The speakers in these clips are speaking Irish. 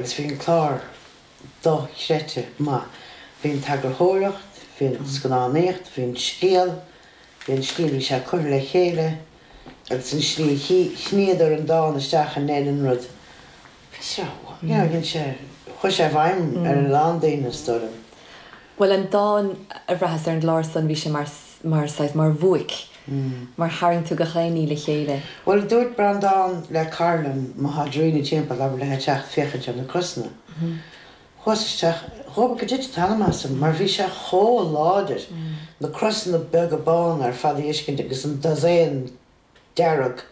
Is bhí an clár dochreidte maith. Bhí an t-eagarthóireacht, bhí an scannánaíocht, bhí an scéal, bhí an tslí a bhí sé curtha le chéile agus an tslí a shníodar an dán isteach in aon an rud chuir sé i bhfeidhm ar a lán daoine is dóigh liom. Bhuel an dán a bhraitheas ar an gclár san bhí sé mar saghas mar bhuaic mar tharraing tú gach aon ní le chéile. Bhuel, a dúirt Breandán le Karlan, má tá Dairena timpeall abair léithe teacht féachaint ar na crosanna. Chuas isteach, dhóbair go dtitfeadh an t-anam asam, mar bhí sé chomh láidir, na crosanna beaga bána ar fad a fheiscint agus an dosaen dearg.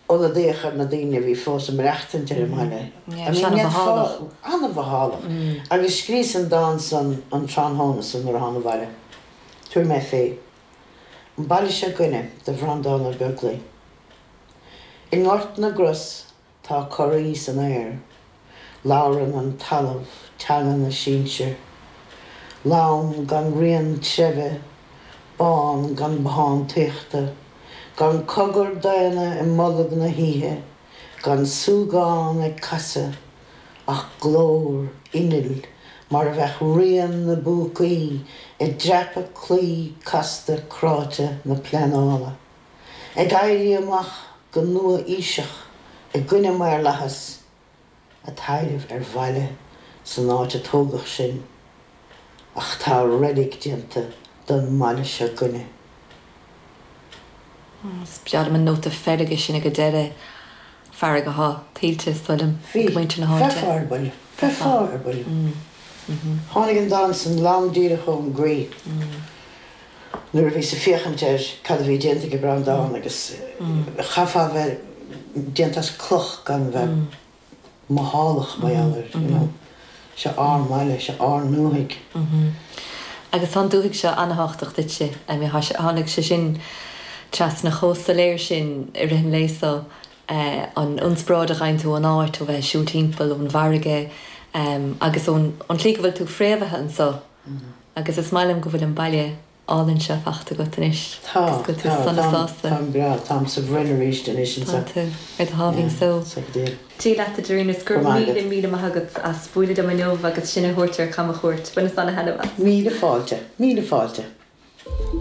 ionadaíocht ar na daoine a bhí fós ag maireachtaint ar an mbaile. I mean, níl fáth, an-mhothálach. Agus scríos an dán san an tráthnóna san nuair a thána abhaile. Tabharfaidh mé fé. An baile seo 'gainne do Bhreandán Ó Beaglaoich. I nGort na gCros tá corraí san aer. Labhrann an talamh teanga na sinsear. Lom gan rian treibhe, bán gan bothántaíochta, gan cogar daonna i mbolg na hoíche, gan súgán ag casadh, ach glór innill mar a bheadh rian na bpúcaí ag dreapadh claí casta cráite na pleanála. ag éirí amach go nua-aoiseach i gcoinne maorlathas ag taibhreamh ar bhaile san áit a tógadh sinn, ach tá reilig déanta den mbaile seo 'gainne. Is braithim an nóta feirge sin ag an deireadh, fearg athá tuillte, is dóigh liom, ag muintir na háite. Bhí. Bheifeá ar buile. Bheifeá ar buile. Tháinig an dán san lom díreach ón gcroí. nuair a bhíos ag féachaint ar cad a bhí déanta ag Breandán agus chaithfeá a bheith déanta as cloch gan a bheith mothálach mar gheall air, you know. Seo ár mbaile, seo ár ndúthaigh. Agus tá an dúthaigh seo ana-thábhachtach duitse. I mean, tháinig sé sin trasna chomh soiléir sin i rith an lae so, an ionsparáid a fhaigheann tú ón áit, ó bheith ag siúl timpeall, ón bhfarraige agus ón tslí go bhfuil tú fréamhaithe anseo. Agus is maith liom go bhfuil an baile álainn seo fachta agat anois. Tá, Is go bhfuil tú tá, sona táim, sásta. táim breá, táim sa bhroinn arís anois Tá anseo. tú ar do sháimhín Yeah, só. so go diail. Dia leat a Dairena is Go raibh maith agat. míle míle maith agat as bualadh liom inniu agus sinn a thabhairt ar camchuairt. Baineas an-taitneamh as. Míle fáilte, míle fáilte.